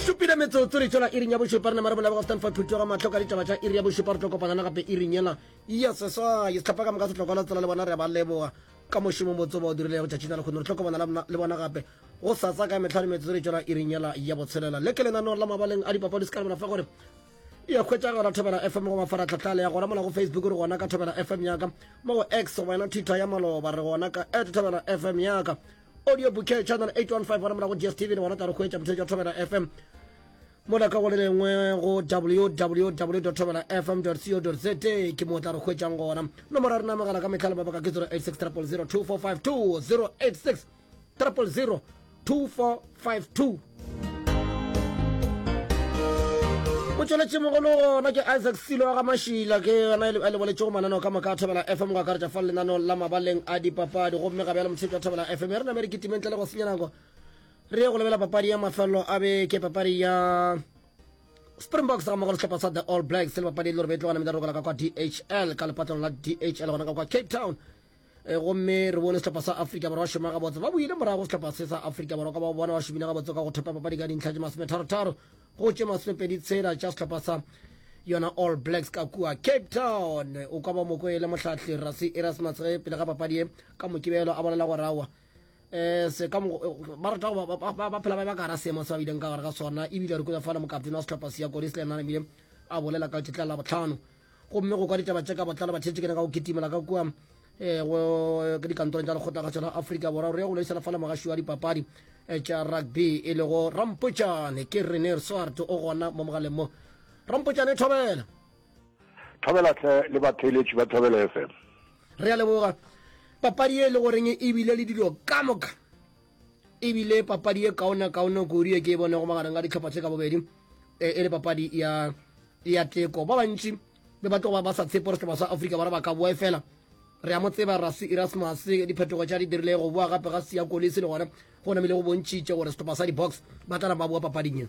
supile metsotso re tšwela iring ya bošupa re ne mare bolabo gaftan fa thuto ga matlho ka ditaba tša iri ya bošupa re tlo kopanyana gape iring yela ya seswa ye setlhapa ka moka setlhokwa la tsela le bona re ba leboga ka mošomo motse ba o dirilego tšatšing la lekgono re tlo kopana le bona gape go sasa ka metlha le metsotso re tšwela iring yela ya botshelela le ke lenaneo la mabaleng a dipapadi se ka lebela fa gore ya hwetša gona thobela fm go mafaratlhatlha le ya gona mona go facebook re gona ka thobela fm yaka mo go x go wena twitter ya maloba re gona ka at thobela fm yaka audio bouquet channel 815 gona mona go dstv re gona tla re hwetša motho jwa thobela fm mona ka go le lengwe go www thobela fm co za ke mo tla re hwetšang gona nomoro ya rena mogala ka metlha le mabaka ke 086 000 2452 086 0002452 o tšweletše mogolo gona ke isaac silo wa ga mašila ke yona a leboletšego mananeo ka moka a thobela fm go akaretša fa lenaneong la mabaleng a dipapadi gomme ga bjalo motshepša thobela fm e re namere kitimeng tle le go senya nako re ye go lebela papadi ya mafelelo a beke papadi ya springboks ga mogo le sehlopha sa the all blacks le papadi e le gore betlogana medarogela ka kwa dhl ka lepatlong la dhl gona ka kwa cape town e eh, gomme re bone setlhopha sa afrika borwa šoma gabotse ba boile morago setlhopha se sa afrika borwa ka ba bona ba šomile gabotse ka go thepa papadi ka dintlha tše masometharo-tharo go tše masomepedi tshela tša setlhopha sa yona all blacks ka kua cape town o ka ba moko e le mohlahli rasi erasmus ge pele ga papadi ye ka mokibelo a bolela gore awa um se ka ba rata ba phela ba ba ka gara seemo se ba bileng ka gare ga sona ebile re kutsa fala mokaptene wa setlhopha se ya kodis le ena ebile a bolela ka tetla la botlhano gomme go kwa ditaba tše ka botlalo ba theetše kena ka go kitimela ka kua um ke dikantorong tša lekgotlagatšo la afrika borwa re ya go loisela fa le mogaši wa dipapadi eh, tša rugby e lego rampotšane ke rener swart o gona mo mogaleng mo rampotšane thobela thobela tle le batheeletši ba thobela fm re a leboga papadi e le goreng e bile le dilo ka moka ebile papadi e kaona kaone kudu e ke e bonego magareng ga ditlhopha tse ka bobedi e, e le papadi ya ya teko ba bantši be ba tlogo ba sa tshepe gore setlhopha sa afrika bara ba ka boe fela re a mo tseba rasi erasmus diphetogo tša di dirile go boa gape ga sia kolisi le gona go namile go bontšhitše gore setlhopha sa di-box ba tla na ba boa papading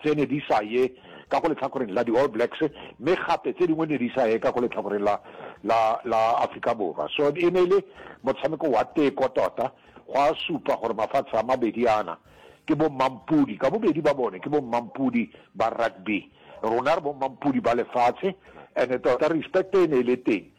tše ne di sa ye ka go lehlakoreng la di-All Blacks, mme gape tše dingwe ne di sa ye ka go lehlakoreng la, la, la Afrika Borwa. So e ne e le motshameko wa teko tota. Gwa supa gore mafatshe a mabedi ana ke bommampudi, ka bobedi ba bone ke bommampudi ba rugby. Rona re bommampudi ba lefatshe, and-e tota respect e ne e le teng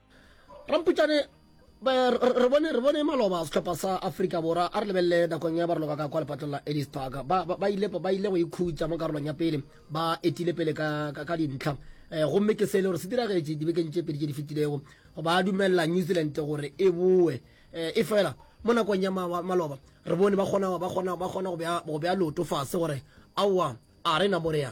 ramputšane re bone re bone maloba setlhopha sa Africa Borwa a re lebelele nakong ya barologa ka kwa lepatlong la Ellis Park ba ba ile ba ile go ikhutsa mo karolong ya pele ba etile pele ka ka dintlha eh gomme ke se le gore se diragetše dibekeng tše pedi tše di fetilego go ba dumella New Zealand gore e boe eh, e fela mo nakong ya maloba re bone ba kgona ba kgona ba kgona go bea go bea loto fase gore aowa a re na morea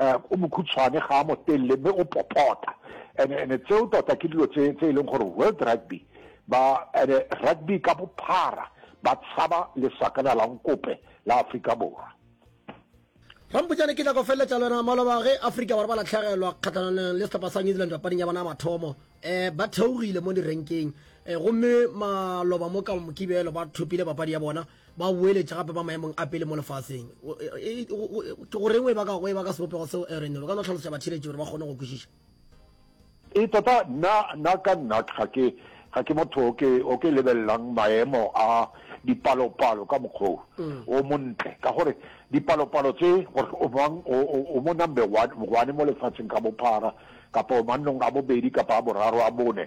uh, o mokhutshwane ga a motelele mme o popota and and tseo tota ke dilo tse tse e leng gore world rugby ba and rugby ka bophara ba tshaba lesakana la nkope la Afrika Borwa rampotšane ke tla go feleletša le wena maloba ge afrika borwa ba latlhegelwa kgatlhanong le setlhopha sa new zealand papading ya bona ya mathomo um ba theogile mo direnkeng um gomme maloba mo ka mokibelo ba thopile papadi ya bona ba boeletša gape ba maemong a pele mo lefaseng. Ke go reng go e ba ka, go e ba ka sebopego seo, Aaron? O ka no hlalosetša batšheletši gore ba kgone go kwešiša. Ee, tota, nna, nna ka nnat ga ke, ga ke motho o ke, o ke lebelelang maemo a dipalopalo ka mokgwa o, o montle. Ka gore dipalopalo tše, gore o mang o, o, o mo number one, one mo lefaseng ka bophara, kapa o mannong a bobedi, kapa a boraro, a bone,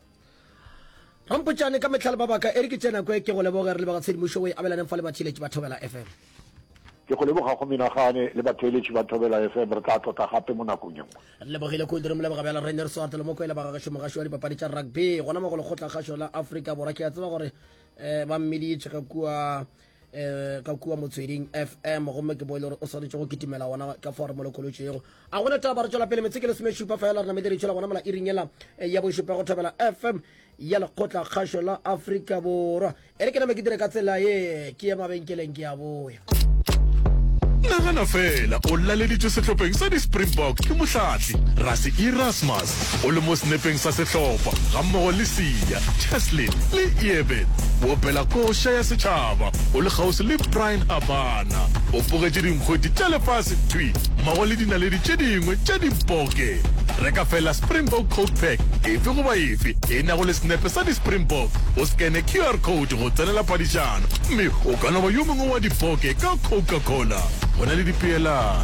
Rampotšane ka metlhale ba baka e re ke tsena kwe ke go leboge re leboga tshedimošo o e abelaneng fa le batheeletši ba Thobela FM. Ke go leboga go menagane le batheeletši ba Thobela FM re tla tlotla gape mo nakong ye nngwe. Re lebogile kudu re mo leboga bjalo Rre Neriso Artelo Mokwele ba gagešo mogaši wa dipapadi tša rugby gona mo go lekgotlakgašo la Afrika Borwa ke a tseba gore um ba mmeditše ga kua eh ka kua motsweding fm gomme ke boele gore o swanetše go kitimela gona ka fao re molokolotše yego a gona taba re tšwela pele metse ke lesome šupa fela re namete ditšhela gona mola iring yela eh, ya bošupa go thobela fm ya lekgotla kgašo la afrika borwa e re ke name ke dire ka tsela ye ke ye mabenkeleng ke a boya nagana fela o laleditswe sehlopheng sa di-springbok ke mohlatli rase erasmus o le mo senepeng sa sehlopha gammogo le Siya, Cheslin le Ieben. O opela koša ya setšhaba o le kgauswi le Brian Abana. O fogetše dinkgweti tša lefase thwi mmogo le dinaledi tše dingwe tša dibokke. Reka feela Springbok Coke Pack efe goba efe e nago le senepe sa di-Springbok, o scanne QR code go tsenela phadišano, mme o ka no ba yo mongwe wa dibokke ka Coca-Cola. Go na le dipeelano.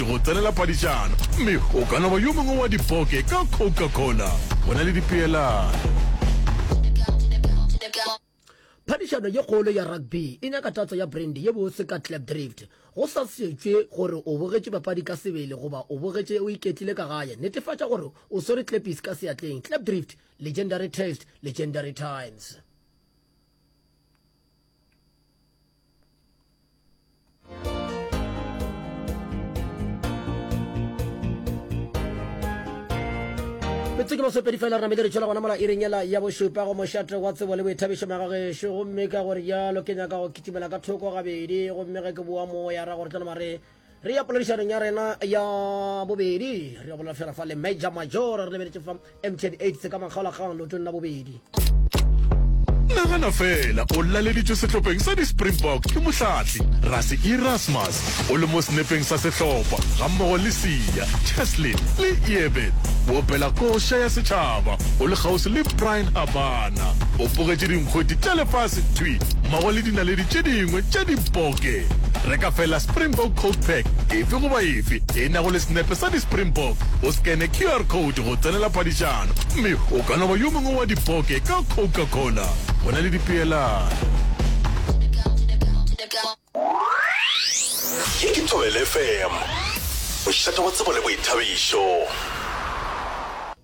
le go tsenela paditšana, mme o ka no ba yo mongwe wa dipoke ka Coca-Cola. Go na le dipeelano. Phadišano ye kgolo ya rugby e nyaka tatso ya brandy ye botse ka Klipdrift. Go sa šetšwe gore o bogetše papadi ka sebele goba o bogetše o iketlile ka gae, netefatša gore o swere klepis ka seatleng. Klipdrift, legendary taste, legendary times. metse ke masopedi fela re namele re tšwela gona mola ireng ela ya bošupa go mošate wa tsebo le boithabišo magagešo gomme ka gore jalo ke nyaka go kitimela ka thoko gabedi gomme ge ke boa moya ra gore tla mare re ya poledišanong ya rena ya bobedi re ya bolela fela fa le major major re lebeletše fa mtn aids ka makgaolakgang leotong la bobedi nagana fela o laleditšwe sehlopheng sa di-springbok ke mohlatli rase erasmus o le mo senepeng sa sehlopha gammogo le sia cheslin le eben wo pela koša ya setšhaba o le kgauswi le brian abana Mosebetna o bogetše dinkgweti tša lefase thwi mmogo le dinaledi tše dingwe tša diboke. Reka feela Springbok Coat Pack efe goba efe e nago le senepe sa di-Springbok, o skene QR code go tsenela phadišano, mme o ka no ba yo mongwe wa diboke ka Coca Cola. Go na le dipeelano.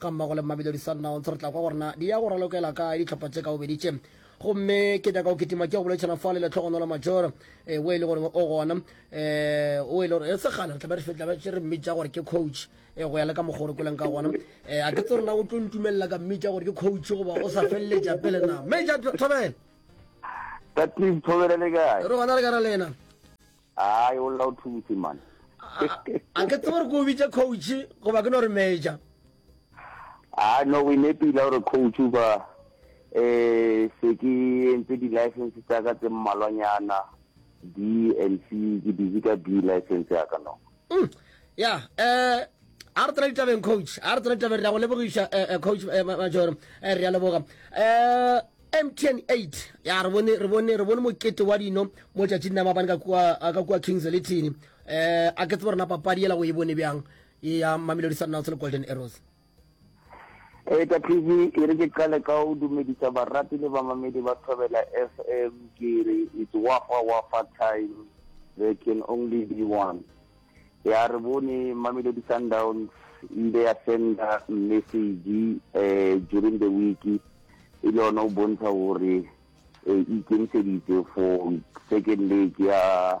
ga mmago le Mamelodi Sundowns re tla kwa gore na di ya go ralokela kae ditlhopha tše ka bobedi tše gomme ke nyaka go kitima ke go boletšana fa le letlhogonolo majoro um eh, o e le gore o gona um eh, o e le gore e eh, segale re tlabe re fetlabe re mmitša gore ke coach um go ya le ka mokgwa gore koleng ka gona um a ke tse rena o tlo ntumelela ka mmitša gore ke coach goba o sa feleletša pele na major thobele re gona le kare lena Aai o lla o thubutse man. A ke tsebe gore ke o bitše coach goba ke no re major. A no we nepile gore coach o ba eh se ke entse di license tsa ka tse mmalwanyana B and C ke busy ka B license ya ka no. mm. ya eh a re tsena ditabeng coach a re tsena ditabeng re ya go lebogiša eh, eh, coach eh, majoro re ya leboga um mtn 8 ya re bone re bone re bone mokete wa dino mo tšatšing na mabane ka kua ka kua kings letini eh a ke tsebo rena papadi yela go e bone bjang ya mamelodi sundowns le golden arrows Eta TV e re ke qale ka go dumedisa barati le bamamedi ba Thobela FM ke re it's wafa wafa time there can only be one ya re bone Mamelodi Sundowns ile ya senda message eh during the week e le yone o bontsha gore eh, e ikemiseditse for second leg ya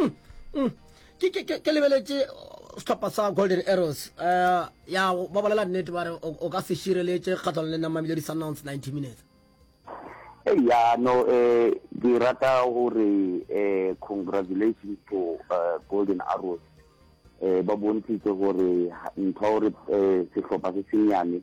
mm, mm. ke, ke, ke, ke lebeletše sehlopha sa golden arrows uh, ya ba bolela nnete ba re o ka se šireletše kgatlhano le namamile di-sundowns 90 minutes ya no eh ke rata gore eh congratulations to uh, golden arrows eh ba bontshitse gore ntho gore eh sehlopha se senyane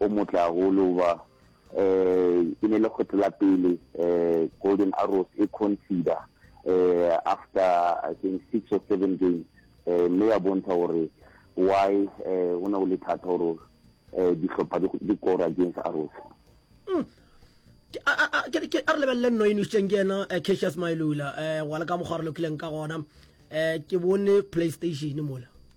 o motle haholo hoba um e ne le kgetho la pele um Golden Arrows e consider um after I think six or seven games um mme ya bontsha gore why um go ne go le thata gore um dihlopha di kora against Arrows mm. ke a re lebelele nno e nusitseng ke ena eh, cassius mailula um eh, wa le ka mokgwa re lokileng ka gona um ke bone playstation mola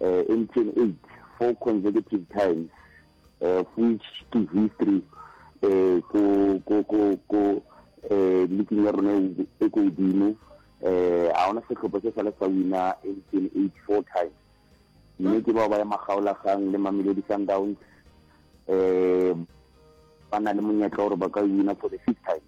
uh, in 28 four consecutive times uh, of which ke history uh, ko ko ko ko uh, leaking ya rona e ko godimo eh a ona setlhopha se sale sa wina in 28 four times mme ke bao ba ya magaolagang le mamelodi sundowns eh ba na le monyetla gore ba ka wina for the fifth time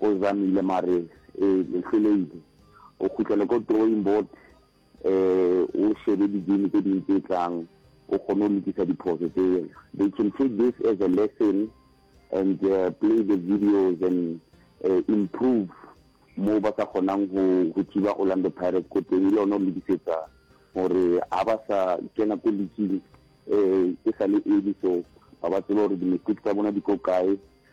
O zamile mare e hloleile. O khutlela ko drawing board e o shebe di game tse ding tse tlang o kgone go lokisa diphoso tse. They can take this as a lesson and uh, play the videos and uh, improve mo ba sa kgonang go go thiba Orlando Pirates ko teng le yone o lokisetsa gore ha ba sa kena ko leaking eh e sa le early so ba ba tseba gore di-mistake tsa bona di ko kae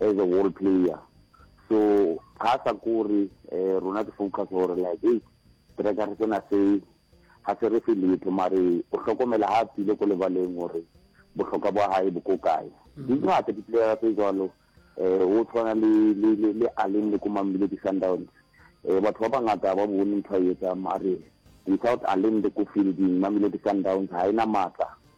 as a wall player so ga sa kore eh, rona ke focus gore like hey trekare sena se ga se re fe letho mare o hlokomela ga a tsile ko lebaleng gore bohlokwa bwa gae bo ko kae mm. di ngata diplayera tse jalo um o tshwana le aleng le ko mambile ke sundowns um batho ba bangata ba bone ntho a etsang mare without aleng le ko fielding mamile ke sundowns ga e na maatla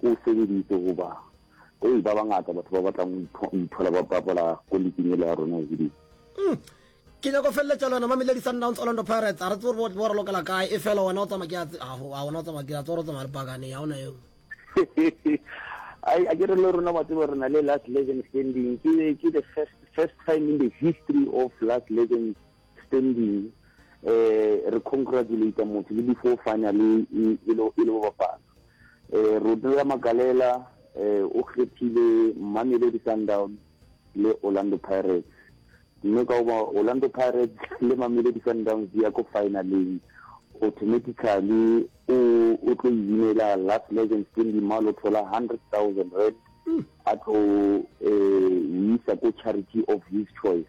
Ke o sebeditse goba Hei, ba bangata batho ba batlang go ipho- go iphola ba bapala ko liking ele ya rona ebile Mm. Ke nyako feleletša le wena Mamelodi Sundowns Orlando Pirates. A re tsebe gore bo re lokela kae e fela wena o tsamaya ke ya tse- aho, a wena o tsamaya ke ya tsore o tsamaya le pakane ya ona eo. Ai, a ke re le rona wa tseba re na le last legend standing ke ke the first first time in the history of last legend Standing eh re congratulate motho le before final e e lo e lo bapala eh Rodela Magalela eh o kgethile Mamelodi Sundowns le Orlando Pirates mme ka ba Orlando Pirates le Mamelodi Sundowns di ya ko finaleng automatically o o tlo inela last legend Stanley Malo thola 100,000 rand hmm. a tlo eh isa ko charity of his choice